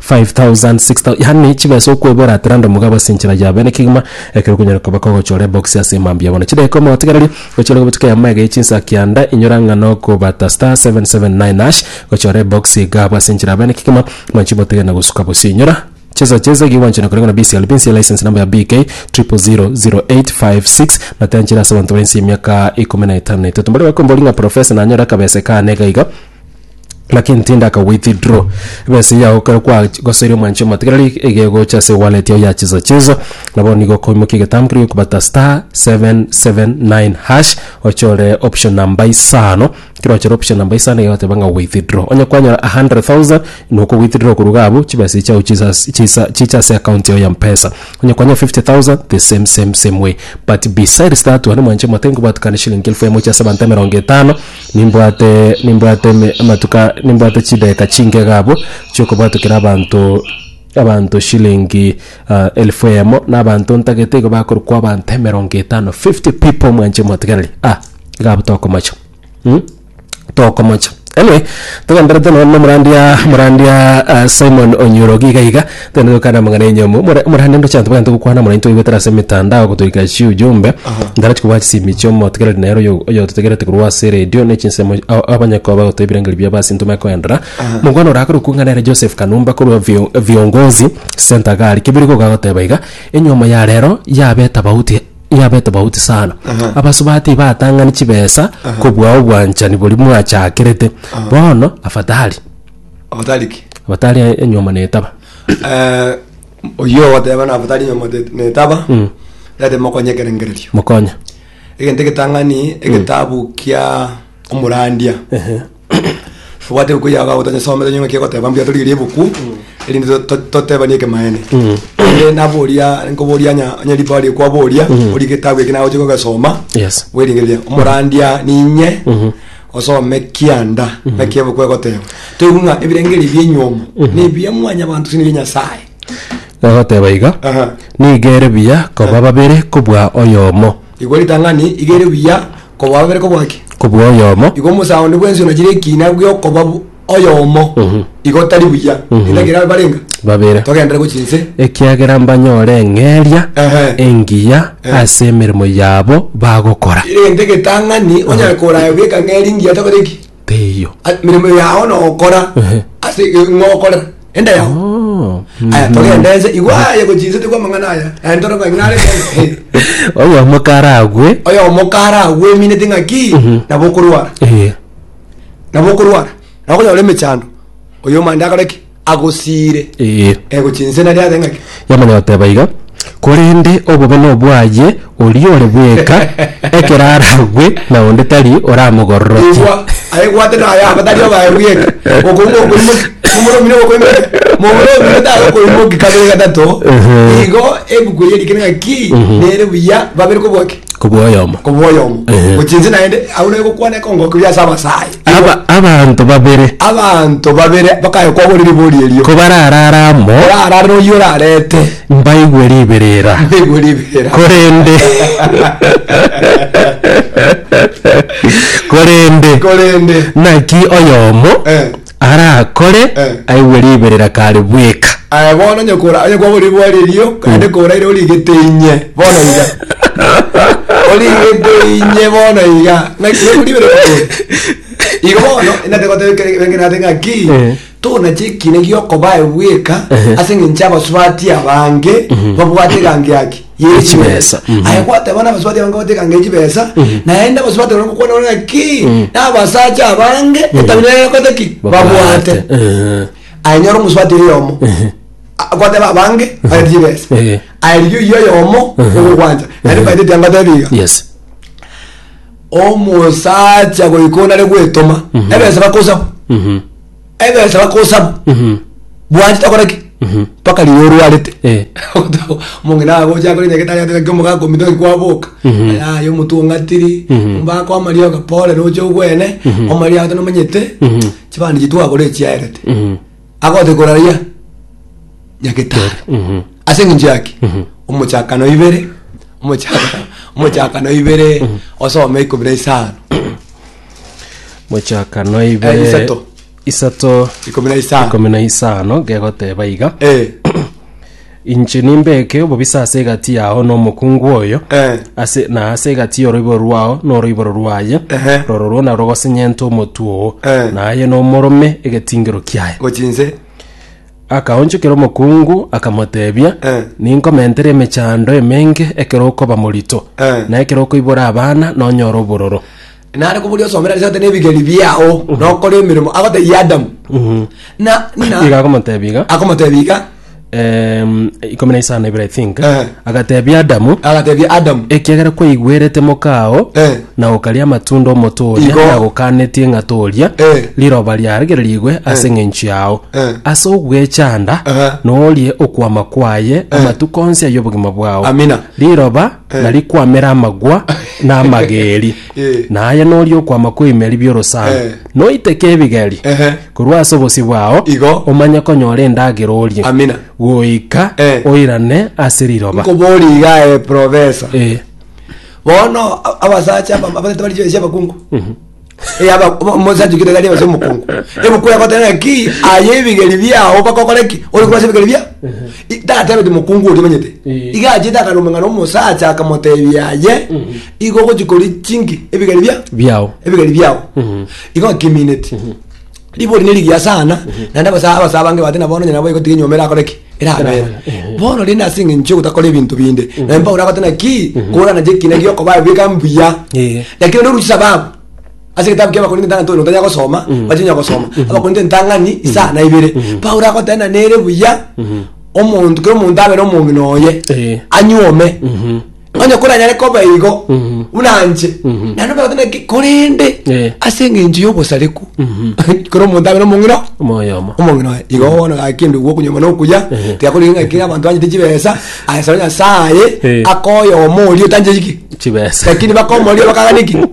Five thousand, six thousand, yaani chibesa okwebera ati rende omogabo ase enchera yabo. Ere kegima ekero okonyora koba kogochora ebox ase emambia yabo na chidaeka omotigererie gochorerwa botuko eyemo ege ye chinsa kianda inyora ng'a nokobata star seven seven nine hash gochora ebox iga abwo ase enchera yabo ere kegima mwanchi botige na gosuka bosio inyora chesa chesa ekiya gwanchorera koreng'ana na BCLB nse ya license number ya BK triple zero zero eight five six na tianchera ase abanto bare nse y'emiaka ikomi na etano na etato. Mbare bakombori ng'a professor nanyore akabesa ekaane iga iga. Lakini tinda ka withdraw besa yao kare kwa goseria omwanchi omatigarari egegocha ase wallet yao ya chizo chizo nabo nigo koimokia egetambe keria okobata star 779 hash ochore option namba isano kero ochore option namba isano egegoteba ng'a withdraw onye kwanyora 100,000 noko withdraw korwa iga abwo chibesa echi chiao chisa chisa chiche ase account yao ya mpesa onye kwanyora 50,000 the same same same way but besides that one omwanchi omotiga nkobwatikana eshilingi elfu emo chia ase abanto emerongo etano. Nimbwate, nimbwate eme, amatuko, nimbwate chidageka chinke iga abwo, chiokobwatokera abanto, abanto shilingi ah, elfu eyemo, na abanto ntagete igo bakorokwa abanto emerongo etano, 50 people mwanche motigereri, ah, iga abwo tokomocha mm tokomocha. Anyway, togendererete nonya na omorandia, omorandia ah, Simon Onyoroge iga iga. Tende gokana amang'ana enyomo more morande ndoche anto bagante gokwana mono intwe goetera ase emetandao gotoika chi ujumbe ndara chikobua chisimi chiomotegereri nere oyo oyototegerete korwa ase eredio ne chinsemo ao abanyakoba gotoa ebirengeri biabo ase intwe bakoendera mokwana orakore okong'a nere Joseph Kanumba korwa vio viongozi center gari kebeire goka goteba iga enyomo ya rero yabe tofauti yabe tofauti sana abasubati batang'ani chibesa kobua obwanchani boria mwachakerete bono afadhali Abatari ki? abatari enyomba na etaba. Eh, oyio ogoteba na abatari nyomba te- netaba Mm. tete mokonye ekerengererio Mokonye. egento egetang'ani egetabu kia omorandia Ehe. obwate ebuku yao gabo tonyesomete nyong'aki egoteba mbuya torigerie ebuku erinde to- to- totebanie ekemaene Mm. Ere naboria nkoboria nya nya ribaga rie kwaboria ori getabu eki nagochia kogesoma Yes. bweringereria omorandia ninye osome kianda naki ebuku egoteba toigwe ng'a ebirengererio bi'enyuomo nebiya mwanyabanto tindi bia nyasae Egoteba iga, Aha. Nigo ere buya koba babere kobua oyomo, igwa ritang'ani igere buya koba babere kobwaki kobua oyomo, igwa omosaondi bw'enswe nachire ekina bw'okoba bu- oyomo Mhm. igo tari buya Mhm. rinde ekero barenga babere togendere gochia inse ekiagera mbanyore eng'eria Ehe. engiya Ehe. ase emeremo yabo bagokora rinde getang'ani onyare koraya geka ng'eri ngiya tokore ki teiyo A- mirimo yao nokora Ehe. ase ng'okorera ende yao Oh, aya mhm. togende ense igo aye gochia inse tigwa amang'ana aya aya ntoro ng'a ng'are oyomo karagwe oyomo kara agweminete ng'aki nabo okorwara Eh. nabo okorwara nabo okonyora ore emechando oyo omanyete akore ki agosiire Ee. Eh, gochia inse nari ase ng'aki Yamani oteba iga, Korende obobe nobwaye oria ore bweka, ekero aragwe na onde tari oramogororokia. Igwa, aigwatera aya aba tari abaye bweka okouma okoimoki momura omino okoimoki momura omino tari okoimoki kabere gatato Ehe. igo ebuku eye erikire ng'aki nere buya babere kobua ki kobwoyomo. Kobwoyomo. Ehe. Gochia inse naende agwo naye gokwana ekongoki buya ase abasae. Aba- abanto babere Abanto babere bakaya kwabori ribori erio. kobararara amo Orarare oyio orarete. mbaigwe riberera Mbaigwe riberera. korende korende Korende. naki oyomo Eh. arakore Eh. aigwe riberera kare bweka. Aye bono onye kora onye kwagora riboa ririo naende kora ere origete inye bono iga origete inye bono iga ng'aki iga koribere kogoro igo bono inate goteba kere benge nate ng'aki Eh. tonache ekina giokobae bweka Ehe. ase eng'encho abasubati abange babwate eganga yaki ye chibesa aye gwateba nabasubati abange goteka nge chibesa naye nda basubati abange gokwana ore ngaki nabasacha abange etabia yaye bakote ki babwate Eh, aye nyora omusubati oyomo A- gwateba abange bagete chibesa Eh. aye riria oyio oyomo ogogwancha naende faida etia ngotebi iga yes omusacha goika onare gwetoma ebesa bakosabu Mhm. Egerecha bakosaba. Bwanchete gokora ki? Mpaka riria orwarete. Eh. Omong'ina agocha akore enyagete agete ngaki omoga akomita ngaki kwaboka. Ayaye omotu ong'atiri. Omba kwa Maria okapore noche ogwene. Omaria agete nomanyete. Chibandi chitu agora echiaerete. Agote koraraia nyagetari. Ase eng'encho yaki? Omochakano ibere. Omochakano ibere osome ikomi na isano. mochaka noibe Eh, isato. isato Ikomi na isano. ikomi na isano gegoteba iga Eh, inche nimbeke obobisa ase egati yao nomokungu oyo Eh. ase na ase egati yoroiboro rwao noroiboro rwaye Ehe. roro rwona rogosenyente omotwe oo Eh. naye nomorome egetingero kiaye gochinse Akaonchokera omokungu, akamoteebia, Eh. Ninkomentere emechando emenge ekero okoba morito, Eh. na ekero okoibora abana nonyore obororo. nare koboria osomera risato nebigeri biao nokora emeremo agotebia adamu na Iga na akomotebia iga. akomotebia iga Em, ikomi na isano ibere I think. Eh. Agateebia Adamu, Agatebia Adamu, Ekiagera kwaigwerete mokao, Eh. na okaria amatunda 'omote oria Igo. nagokaanetie ng'a toria, Eh. riroba riarigererigwe ase eng'encho yao. Eh. Ase ogwechanda Aha. norie okwama kwaye amatuko onsi ay'obogima bwao. Amina. Riroba narikwamere amagwa na amageeri, Eh. na aye norie okwama kw'ebimeri bi'orosana. Eh. Noiteke ebigeri, Ehe. Korwa ase obosio bwao Igo. omanye konyora endagera orie, Amina. goika Eh. oirane ase riroba. Nkoborie iga aye professor. Eh, Bono a- abasacha aba- abatete bari chibesa abakungu. Eh aba omo- omosacha okire gari ase omokungu. Ebuku yakotera ki aye ebigeri biao bakokore ki? Ori kwase ebigeri bia? I- Tatebe ti mokungu ori manyete. Eh. Iga aje takaruma ngaro omosacha akamotebia aye igo gochi kori chinki ebigeri bia? biao. Ebigeri biao. Igo akimineti ribori ne rigiya sana, naende abasa abasa abange bate na bono nyina nabo egotiga enyomera akore ki? Erabere. Erabere. Bono rende ase eng'encho yogotakora ebinto binde, naende Paulo agote naki? Korana je ekina giokobaa bweka mbuya. Eh. Lakini rende oruche sababu. Ase egetabu kia Abakorinto entang'ani toyo notanya gosoma, mwache onya gosoma. Abakorinto entang'ani isaa na ibere. Paulo agoteba na nere buya omonto kera omonto abe nomong'ina oye. Eh. Anyuome. onye koranyare koba igo buna anche naende obegote naki korende Eh. ase eng'encho y'obosareku kero omonto abe nomong'ina Omoyomo. omong'ina oye igo bono gaki ndugu okonyoma na okuya tigakorire ng'a kera abanto banyete chibesa asaba nyasaye Eh. akoyoma oria otancheti ki Chibesa. lakini bakomoria bakagania ki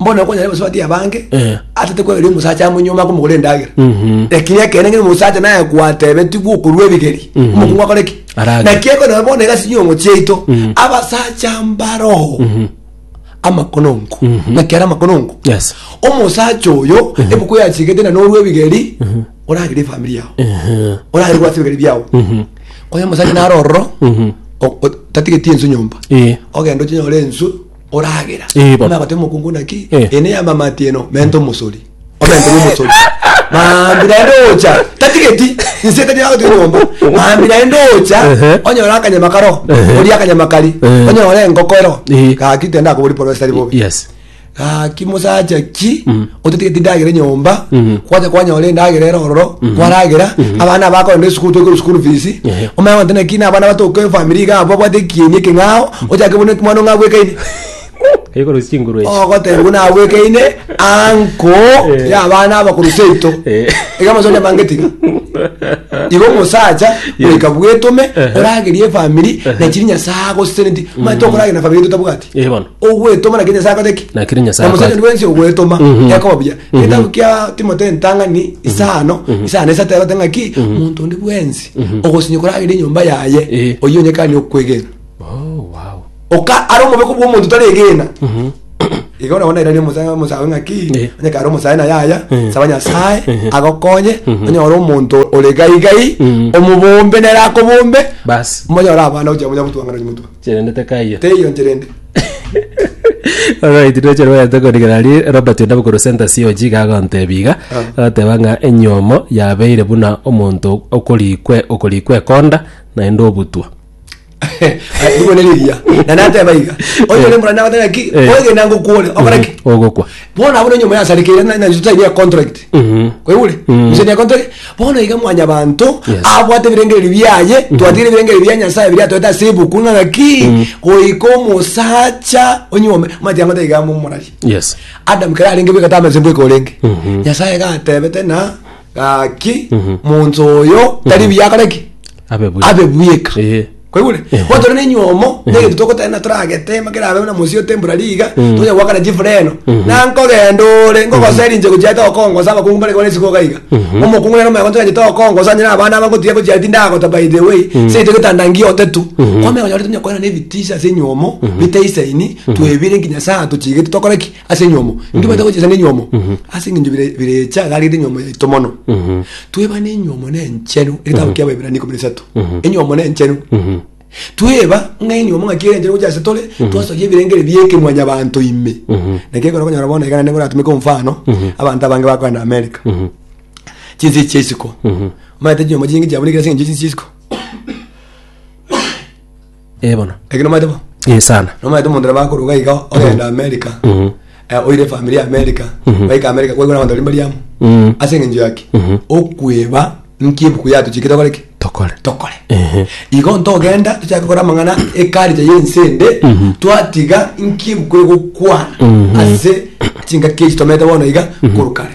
mbona okonyare gose batie abange Eh. atete kwegeria omosacha amo nyuma akomogora endagera Mhm. lakini ekene ng'ene omosacha naye gwatebetigwe okorwa ebigeri Mhm. omokungu akore ki Arage. naki ekonaba bono egasi nyongo chiaito Mhm. abasacha mbaroho Mhm. amakonongo Mhm. naki ara amakonongo Yes. omosacha oyo ebuku yachigete na norwa ebigeri oragire efamiri yao Mhm. oragire gwasa ebigeri biao Mhm. konya omosacha narororo Mhm. o- o- tatigeti ensu nyomba Eh. ogenda ochinyore ensu oragera. Eh, baba. Nabate mokungu naki Eh. ene ya mamati eno mente omosori. Omente omosori. Mambi naende ocha tatigeti inse tari agoti nyomba. Mambi naende ocha Ehe. onyora akanyama karo. Ehe. Ori akanyama kari. Eh. Onyora engoko ero. Eh. Gaki tenda akobori poro esari bobe. Yes. Gaki mosacha ki otetigeti ndagera enyomba Mhm. kwacha kwanyora endagera ere ororo kwaragera abana abakorenda esukuru toikore school fees Ehe. omanye gotena ki na abana batoka efamiri iga abo babwate ekieni ekeng'ao ochake buna mwana ong'a abwekaine Ekoro chinguru echi. ogoteba buna abwekaine anko Eh. ya abana abakuru seito Eh. iga amasonya mange tiga igo omosacha Yes. goika bwetome Ehe. oragerie efamiri na chiri nyasae agoseseneti manye tokoragera na famiri totabwati Eh, bono. ogwetoma naki nyasae akote ki Nakiri Nyasae na mosacha akote. bwensi ogwetoma Mhm. yakoba buya Mhm. getabu kia timote ntang'ani isano isano esato yagote ng'aki omonto onde bwensi ogosinye koragera enyomba yaye Eh. oyio onyekani okwegena Oh, wow. oka ari omobeko bwa omonto taregena Mhm. igo nabona irari omosae omosae ng'aki Eh. onyeka ari omosae na yaya Eh. saba nyasae Eh. agokonye onyore omonto ore gaigai Mhm. omobombe nere akobombe Basi. monyora abana ocha munya gotwang'ana nyimotwe Chirende tekaiyo. Teiyo nchirende. Alright, ndoche rwete korigera ri Robert Ondabu korwa Center COG iga agontebia iga agoteba ng'a enyomo yabeire buna omonto okorikwe okorikwa ekonda naende obutwa. Ai, Rigo nerigiya. Na nateba iga. Onye ore mborane nagote ng'aki, Eh. oigena ngokuore, okore ki? Ogokwa. Bono abwo nonyomo yasarekeire na na totainia econtract. Mhm. Kwaigure? Mm. Gose necontract. Bono iga mwanyabanto Yes. abwate ebirengererio biaye, twatigire ebirengererio bia Nyasaye biria atoete ase ebuku ng'a ng'aki goika omosacha onyuome mati ang'ote iga momorarie. Yes. Adam kere arenge bweka tamase mbweka orenge. Mhm. Nyasaye gatebete na Gaki, monto oyo tari buya akore ki? Abe buya. Abe buyeka. Ehe. Kwaigure? Ehe. Bono tore nenyomo, negento togotena toragete, ema kerabe buna mosio temporary iga, tonya goakana chifureno. Na nkogenda ore, ngogosera inche gochia tokongosa abakungu mbare kobana esiko iga iga. Omokungu nere omoegonto yanje tokongosa onye na abana aba ngotiga gochia tindagota by the way, seito egetanda ngiote tu. Kwamenya onye ore tonya koirana ebitisha ase enyomo, bitesaini, twebire nkinya saa tochigete tokore ki? ase enyomo inki bata gochesa ng'enyomo ase eng'encho bire- birecha iga arigete enyomo yaito mono twebana enyomo na enchenu egetabu kia abaebrania ikomi na isato enyomo na enchenu tweba ng'a enyomo ng'aki ere enchenu gocha ase tore twasoyia ebirenge ebi bieka mwanyabanto ime naki ekero okonyora bono iga naende ngoratumeke omfano abanto abange bakogenda america chinse chia isiko omanyete chinyomo chinge chiabunekire ase eng'encho ya chinse chia isiko. Eh bono. Eki nomaete bo? Eh sana. Nomaete omonto nabo akorwa iga iga ogenda America. Mhm. Eh, oire family ya America. Mhm. Baika America kwaigwa nabanto baria mbari amo. Mhm. Ase eng'encho yaki. Mhm. Okweba nki ebuku yatochikete tokore ki? Tokore. Tokore. Ehe. Igo ntogenda tochake gokora amang'ana ekarija y'ense ende Mhm. twatiga nki ebuku egokwana Mhm. ase chingaki echi tomerete bono iga korwa kare.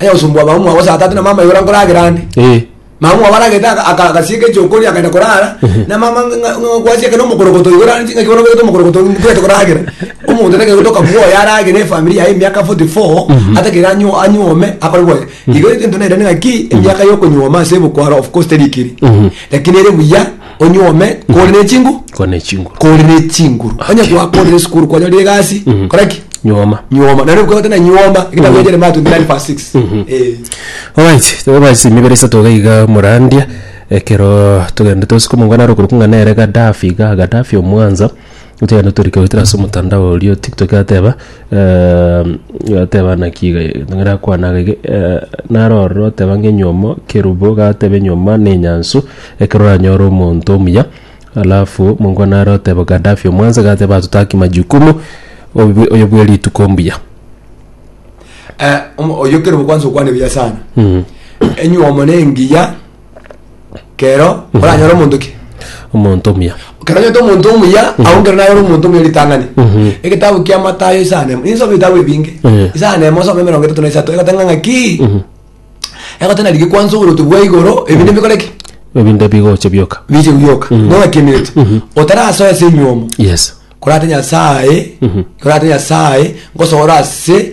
Onye ogosumbwa mama mwao saa tatu na mama iga orankoragera ande. Eh. Mama mwao aragete aka- aka- agasieka echokoria akagenda korara na mama ng'a- ng'a- ng'a- gwasiekana omokorogoto iga orare chingaki bono obegete omokorogoto mbwete koragera omonto taiga gotoka bwoye arage na efamiri yaye emiaka 44 atakire anyu- anyuome akore bwoye igo egento nairane ng'aki emiaka yokonyuoma ase ebukwaro of course teri ekeri lakini ere buya onyuome kore ne chingu kore ne chinguru kore ne chinguru onye gwakorire esukuru kwanyorire egasi kora ki nyuoma nyuoma nare bukabata na nyuoma ekitabo ya jeremia 29 verse 6 Eh. Alright, tebe basi emibere isato iga iga morandia ekero togende tosike omongwana aro okorokwa ng'a nere Gaddafi iga Gaddafi omwansa Gocha rende tori goetera ase omotandao oria o tiktok yateba yateba naki iga nere akwana iga iga naro ororo oteba ng'a enyomo kerubo gateba enyoma na enyansu ekero oranyore omonto omuya alafu mongo naro oteba Gadafi omwansa gateba atotaki majukumu obi oyo bwe rituko mbuya. Eh, omo- oyo kerobo kwansa okwana ebuya sana enyomo na engiya kero oranyore omonto ki omonto omuya kero onyorete omonto omuya ago nkero nayore omonto omuya ritang'ani egetabu kia matayo isano na emo ninsomi ebitabu ebinge Eh. isano na emo osome emerongo etato na isato egoteba ng'aki egoteba nari gekwansa oboruoti bwa igoro ebinto bikore ki ebinde bigocha bioka biche bioka bono ng'aki emineti otarasoa ase enywomo yes korate nyasaye korate nyasaye ngosoora ase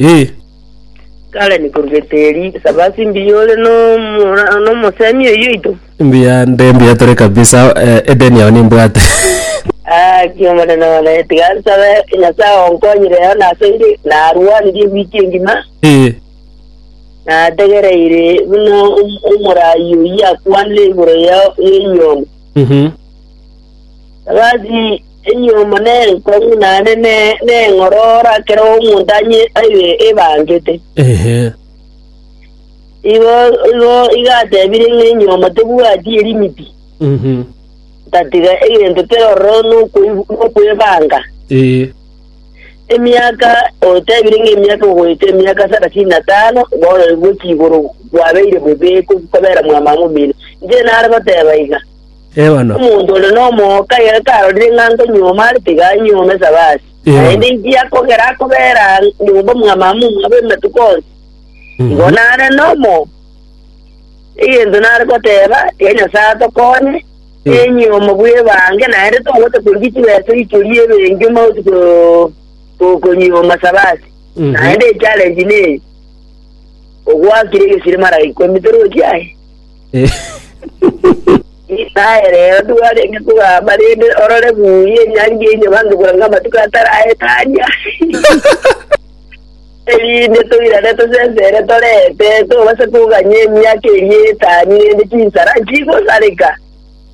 Ee. Karen, korwegete eri esabasi mbuya ore nomora nomosemi oyio oito. Mbuya nde mbuya tore kabisa eh, edeni yao nimbwate. Aki omonene one, tiga nsabe Nyasae onkonyire eyo nasoire, narwanirie ewiki engima, Ee. nategereire buna om- omoraai oyio akwanire igoro ya y'enyondo. Mhm. Sabasi Enyiomo nenkong'u naende neng'orora kera omonto aye ebangete. Igo igatebire ng'a enyiomo tebwati erimiti, tatiga egento kera ororo nokwebanga. Emiaka otebire ng'a emiaka goeta emiaka sarasini na tano bono gochia igoro bwabeire bobe kobera mwamama omino. Inche nare goteba iga. Eono. Omonto ore nomooka ere tarorire ng'a nkonyioma are tiga anyiome Sabati, Eono. naende inchia kogera akobera nyomba omw'amama omwabo ematuko onsi. Igo nare nomo egento nare goteba, tiga Nyasae atokonye, enyioma bw'ebange, naende togocha korigia chibeso ichoria ebenki omausi ko- ko- konyioma Sabati. Mhm. Naende echallenge neye, ogwakire egesiri maraika ime torochi aye. Aye rero ndwarenge kogamba rende, orore buya enyangi enyuma nkebwanga amatuko atari aetania, erinde toirane tosesere torente, tobase koganya emiaka eria etani rende chinsara nchigosareka.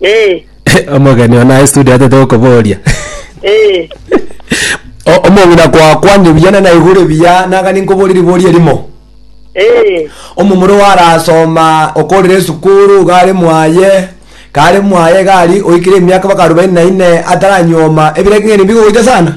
Eh, omogeni one aye studio atete okoboria eh. O- omong'ina kwakwanire buya na naigure buya naga ninkoborie riboria erimo Eh, omomura oarasoma okorire esukuru gare mwaye kare mwaye gari oikire emiaka baka arobaini na ine ataranyuoma ebirenge ng'ene bigogocha sana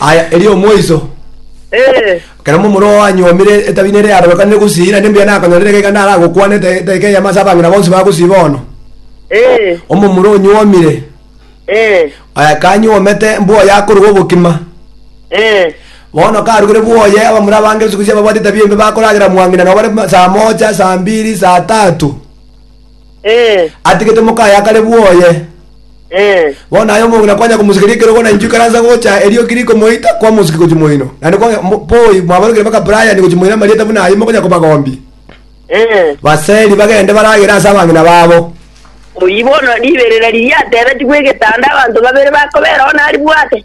Aya, erio omoiso. Eh. Ekero momura oo anyuomire etabi nere yarobekanire gusii, naende mbuya nakonyorire iga iga naragokwane ete- eteeka eyemo ase abang'ina bonsi ba gusii bono. Eh. Omomura onyuomire, Eh. eh, kanyuomete mbwoye akoruga obokima. Eh. Bono karugire bwoye, abamura abange siku isi ababwate etabi embe bakoragera mwang'ina nabo bare ma- saa moja, saa mbiri, saa tatu. Eh, Atigete mokaye akare bwoye. eh, Bono aye omong'ina kwanya komosekeria ekerogo na inchuo ikaransa gocha erio kiri komoita kwamosiki gochia moino. Naende kwa mo- poi mwabarokire mpaka Brian gochia moino amarieta buna ayio mokonya kobagombia. eh. Baseri bagende baragere ase abang'ina babo. Oyio bono riberera riria atebetigwe egetanda abanto babere bakobera one aribwate.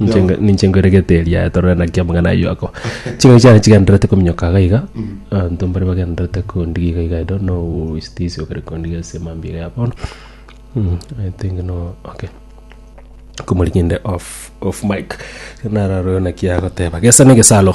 Ninche nge- ninche nkoeregete eria torore naki amang'ana ayio ako ching'aki chiane chigendererete kominyoka iga iga abanto mbare bagendererete kondiga iga iga ido no obositisi okare kondiga ase mambia iga ya bono Mm, i think no okay komori kende off off mic nararore naki agoteba gesa na egesaro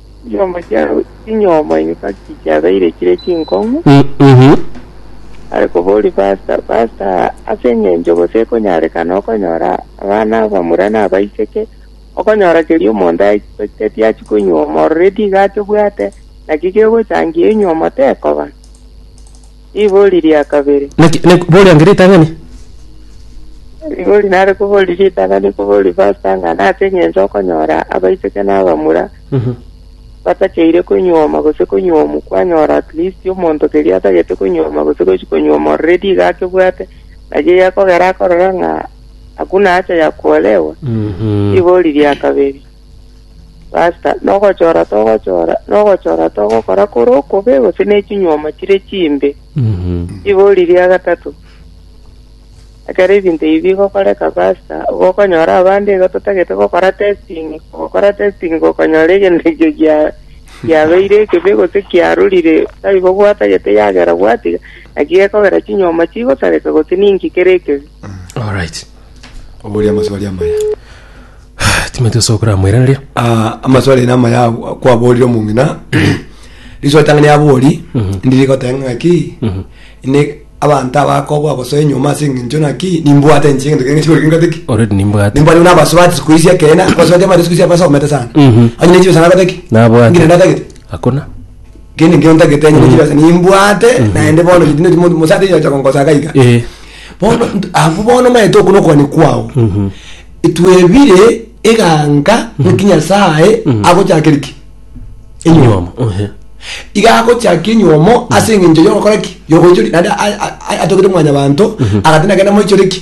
Chinyoomo chia chinyoomo insa chichiabeire chire chinkong'u, Mhm. are koboria Pasta, Pasta, ase engencho gose ekonyarekana okonyora abana abamura na abaiseke, okonyora keria omonto aeteti achia konyuoma already iga atebwate, naki gegochangia enyuomo tekoba? Ribori ria kabere. Naki ne bori ange ritang'ani? Ribori nare kobori ritang'ani kobori pastor ng'a nase eng'encho okonyora abaiseke na abamura Mhm. batacheire konywoma gose konywomu kwanyora at least omonto keria atagete konywoma gose gochi konywoma already iga akebwate naki egekogera akorora ng'a hakuna hacha ya kuolewa. Mhm. Ribori ria kabere. Basta, nogochora togochora, nogochora togokora kore okobe gose ne chinyuoma chire chimbe. Mhm. Ribori ria gatato. Ekero ebinto ebi bigokoreka basta, gokonyora abande iga totagete gokora testing, gokora testing gokonyora egento ekio gia giabeire ekebe gose kiarurire taibo gwatagete yagera gwatiga, naki gekogera chinyuoma chigosareka gose ninki kere ekebe. Alright. oboria amaswali amaya. Timothy ase okoramoiraneria. Ah, amaswali aino amaya agwo- kwaborire omong'ina riswali tang'ani yabori ndiri goteba ng'aki inde abanto abakobwa bosa enyuma ase eng'encho naki nimbwate inche egento kende sikori kingate ki Already nimbwate. nimbwate buna abasubati siku ici ekeene abasubati abare siku ici abasomete sana Mhm. onye ne chibesa nagoteki Nabwate. ngire natagete Hakuna. Kende nkio ntagete enye ne chibesa nimbwate, naende bono ri- tindi mo- mosacha oyo ocha gongosaka iga. Eh. Bono nt- abwo bono omanyete okwo na okobani kwao. Twebire eganka ng'aki Nyasaye agochakere ki? Enyuomo. Enyuomo. Ehe. Iga agochaka enyuomo ase eng'encho yogokora ki? Yogoichoria. Naende a- a- a- atogete mwanyabanto, agati nagende amoichore ki?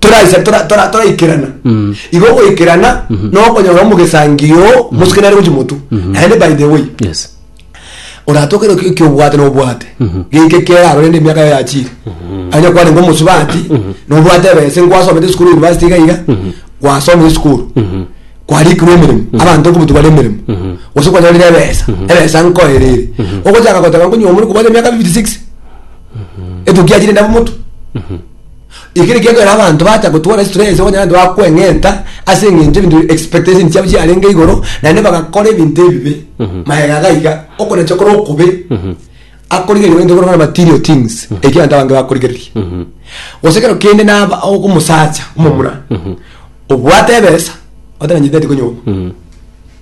toraisa tora- tora- toraikerana Mm. igo ogoikerana Mhm. nokonyora omogesangio mosuke nare gochi motu Mhm. naende by the way yes oratokere oki- ekiobwate nobwate Mhm. geke kera arore na emiaka yaye yachire anya kware ngo mosubati nobwate ebese nkwasomete esukuru university iga iga Mhm. gwasomire esukuru Mhm. kwarikirwe emeremo abanto okobutu bare emeremo Mhm. gose kwanyorire ebesa ebesa nkoerere ogochaka goteba nkonyo omori kobwate emiaka 56 etuki yachire ndaba motu Eke nekiagera abanto bacha gotwara stress onye naende bakweng'enta ase eng'encho ebinto expectation chiabo chiarenge igoro naende bagakora ebinto ebibe magega iga iga okonacha kore okobe akorigereria egento ekero okona material things ekio abanto abange bakorigereria gose ekero kende naba o- omosacha omomura obwate ebesa oteba nchiteti konyomwa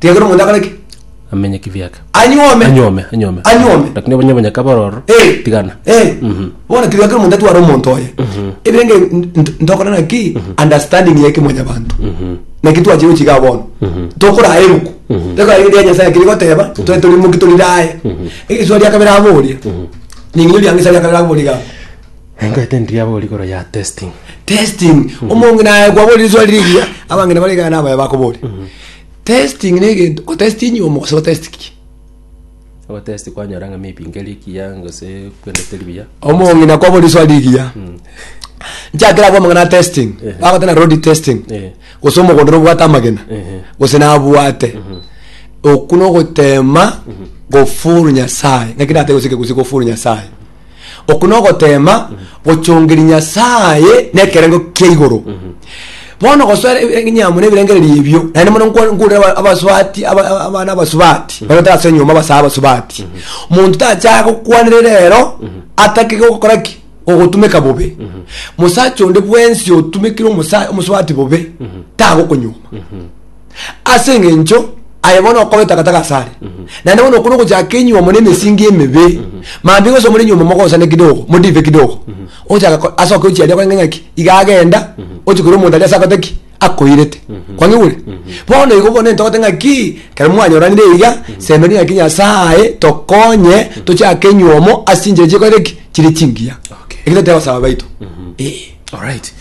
Tiga kera omonto akore ki? Amenye kibiake. Anyuome. Anyuome, anyuome. Anyuome. Lakini obonye obonye kaba ororo. Eh. Tigana. Eh. Mhm. Bono tiga kera omonto atware omonto oye. Ebirenge nt- ntokore naki understanding ya ekimwanya banto. Naki twache gochiga bono. Tokora ebuku. Tokora ebuku ya Nyasaye kiri goteba, tore turi muki turi raye. Egesuwa ria kabere aboria. Ninginyo ria ngisa ria kabere aboria ga. Engoete ndiria bori igoro ya testing. testing omonge naye kwaborire swali rigiya abangene bari gana abaye bakobori Testing negento otesti enyomo gose otesti ki? Ogotesti kwanyora ng'a mepinga eria ekiya gose kwendete eria buya. Omong'ina na kwabora risoa rigiya. Nchakera abwo amang'ana a testing. Ehe. Bagoteba na road testing. Eh. Gose omogondoro obwate amagena. Ehe. Gose nabwate. Okwo nogotema gofuru Nyasaye. Naki nate gose kegusii gofuru Nyasaye. Oku nogoteema gochongeria Nyasaye nekerengo kia igoro. Bono gosoera e- enyamo nebirengererio ebio, naende mono nko- nkorire aba- abasubati aba- aba- abana abasubati bagotera ase enyomba basae abasubati. Monto tacha gokwanire rero atake gokora ki? Ogotumeka bobe. Mosacha onde bwensi otumekire omosa- omosubati bobe tagokonyoma. ase engencho aye bono okobeta gata gasare naende bono okuna ogochaka enyuomo na emesingi emebe mambi gose omore enyuomo mogosane kidogo modive kidogo ochaka ko- ase oke ochiaria korenge ng'aki iga agenda ochi koira omonto aria ase akote ki akoirete kwangigure bono igo bono ntogote ng'aki kero mwanyoranire iga semeria ng'aki nyasaye tokonye tochake enyuomo ase chinchera chikorete ki chire chingiya Okay. ekero toteba gosaba baito eh. Alright,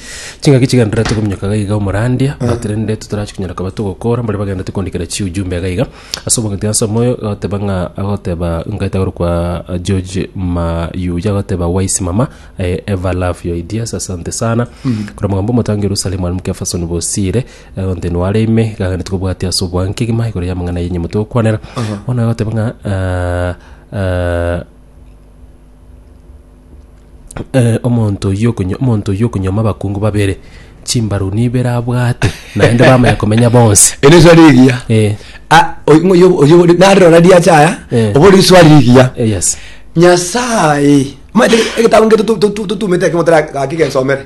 chingaki chigenderera tokominyoka iga iga omorandia but rende totarachia konyara koba togokora mbare bagenderete koandikera chiujumbe iga iga ase omogati ase omoyo agoteba ng'a agoteba nkaete agoro kwa eh, George Mayuya agoteba wise mama I ever love your ideas asante sana kora mogambo omotangi Yerusalemu ali mukefasoni bosire agonte nware ime gagende tokobwatia ase obwanke gima igoro y'amang'ana yenye motokwanera bono agoteba ng'a ah, ah, omonto oyio okonyo omonto oyio okonyoma abakungu babere, chimbaru nibere abwate, naende bamanya komenya bonsi. Ere iso rigiya Eh, Ah, oy- ng'o- yo- oyo ore- nare rora riachaya Eh. obo riswa rigiya eh, yes. nyasaye omanyete egetabu ngeto tu- tu- tu- tutumete ekemo tara gaki gensomere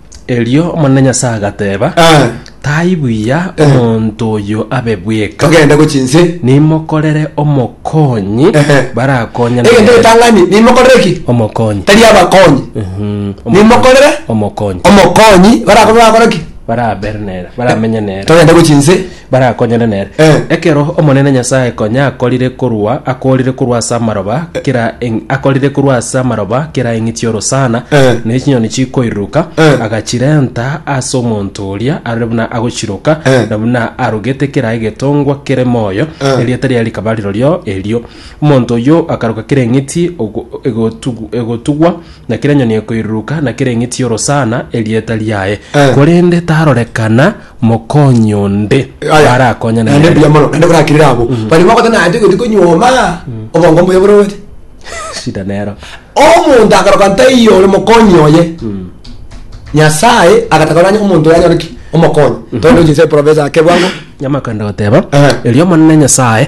Erio Omonene Nyasae agateba, Ah. Tai buya omonto oyo abe bweka, togende gochia inse nimokorere omokonyi Ehe. barakonyane egento nere. getang'ani nimokorere ki Omokonyi. tari abakonyi Mhm. nimokorere Omokonyi. omokonyi barakorwa bakora ki Barabere nere, baramenye nere. togende gochia inse barakonyane nere. Eh. Ekero Omonene Nyasae konya akorire korwa akorire korwa ase amaroba kera eng- akorire korwa ase amaroba kera eng'i chi'orosana Eh. ne chinyoni chikoiruruka Eh. agachirenta ase omonto oria are buna agochiroka Eh. na buna arogete kera egetongwa kere moyo Eh. erieta riaye rikaba rirorio erio omonto oyio akaroka kera eng'iti ogo- egotugu- egotugwa na kera enyoni ekoiruruka na kera eng'iti y'orosana erieta riaye Eh. korende tarorekana Mokonyi onde Aya. arakonya Naende nere. mbuya mono, naende korakirire abwo. Baria bagoteba naye toigeti konyuoma, obongo mbuya borobetie. Shida nero. Omonto akaroka ntaiyo ore mokonyi oye. Nyasaye agataka oranye omonto oyo anyore ki? Omokonyi. Tore nochinsa eprovince ake bwango. Nyamakande goteba, Ehe. Erio Omonene Nyasae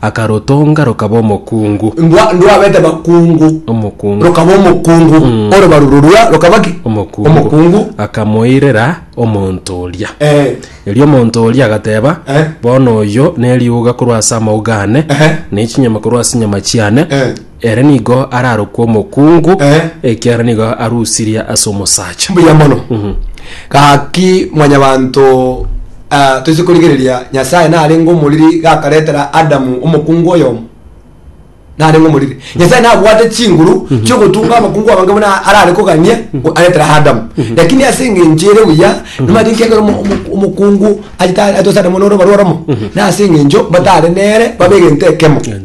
Akarotonga rokaba omokungu. Ndwa, ndwa abete bakungu. Omokungu. Rokaba omokungu. Mm. Orobaru rorua rokaba ki? Omokungu. Omokungu. Akamoirera omonto oria. Eh. Erio omonto oria agateba, Eh. Bono oyo neriuga korwa ase amauga ane, Ehe. ne chinyama korwa ase chinyama chiane, Eh. Ere nigo ararokwe omokungu, Eh. ekiagera nigo arusirie ase omosacha. mbuya mono gaki mwanyabanto ah, toise korigereria nyasaye narenge omoriri gakaretera adamu omokungu oyomo narenge omoriri nyasaye nabwate chinguru chiogotunga abakungu abange buna arare kogania go- aretera adamu lakini ase eng'encho ere buya nimanyete ekiagera omo- omo- omokungu achita- atose adamu noroba rworomo nase eng'encho batare nere babe egento ekemo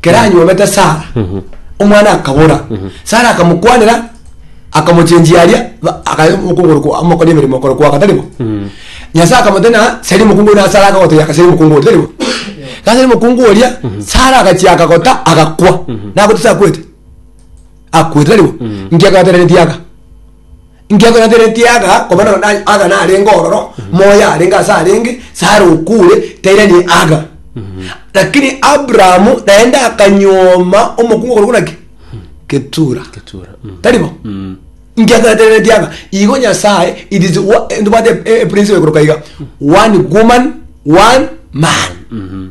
kera anyuomete sara omwana akabora sara akamokwanera akamochenjia aria ba- akaya omokongoro kwa- amokoria emeremo okoro kwaka taribo nyasaye akamotena seri mokungu oria na sara akagotebi aka seri mokungu oria taribo gasi seri mokungu oria sara agachia akagota agakwa nagote sakwete akwete taribo nki akabateneretie aka Inki akonatenetie aga, koba nonya na aga narenge ororo, moyo arenge ase arenge, Sara okure, tairani aga. Lakini Abrahamu naende akanyuoma omokungu korokwa naki? Ketura. Ketura, mm. Tari bo? Mm. Inki akonatenetie aga? Igo Nyasaye, it is wa- eh, ntobwate e- e- principle ekoroka iga. One woman, one man.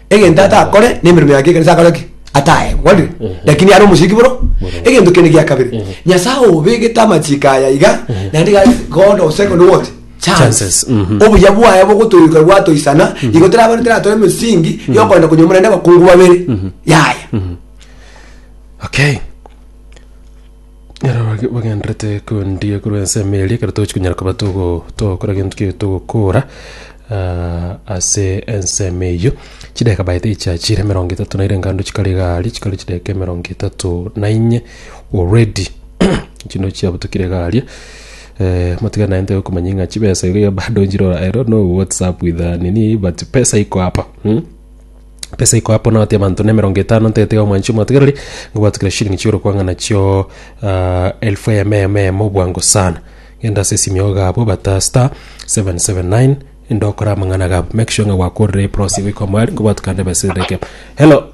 egento atakore nemeremo yake ekanisa akore ki atae kwari lakini are omochiki boro egento kende gia kabere nyasaye obegete amachiko aya iga naende ga god of second what chance Chances, mhm. obuya bwaye bogotoyuka bwatoisana igo terabare teratore emesingi yokogenda konyomora naende abakungu babere yaya okay Ekero bage- bagenderete kwendia korwa ensemo eria ekero togochi konyara koba togo- togokora gento ki togokora ah, ase ensemo eyio chideka baete echiachire emerongo etato na ere engando chikare iga aria chikare chideka emerongo etato na inye already chinde chiabutokire iga aria motige naye ntoe komanya ng'a chibesa iga bado nchire ororo no whatsapp with ah nini but pesa iko apa mm. Pesa ikoa Ponati abanto nemerongo etano ntegete iga omwanche omwategereri ngobwate kera shilingi chi'orokwang'ana chio ah, elfu eyemo eyemo eyemo obwango sana genda ase esimiogo gabo bata star 779 inde okore amang'ana gabo make sure ng'a gwakorire eprosi goika omwari ngobwate kande ebesa ereke hello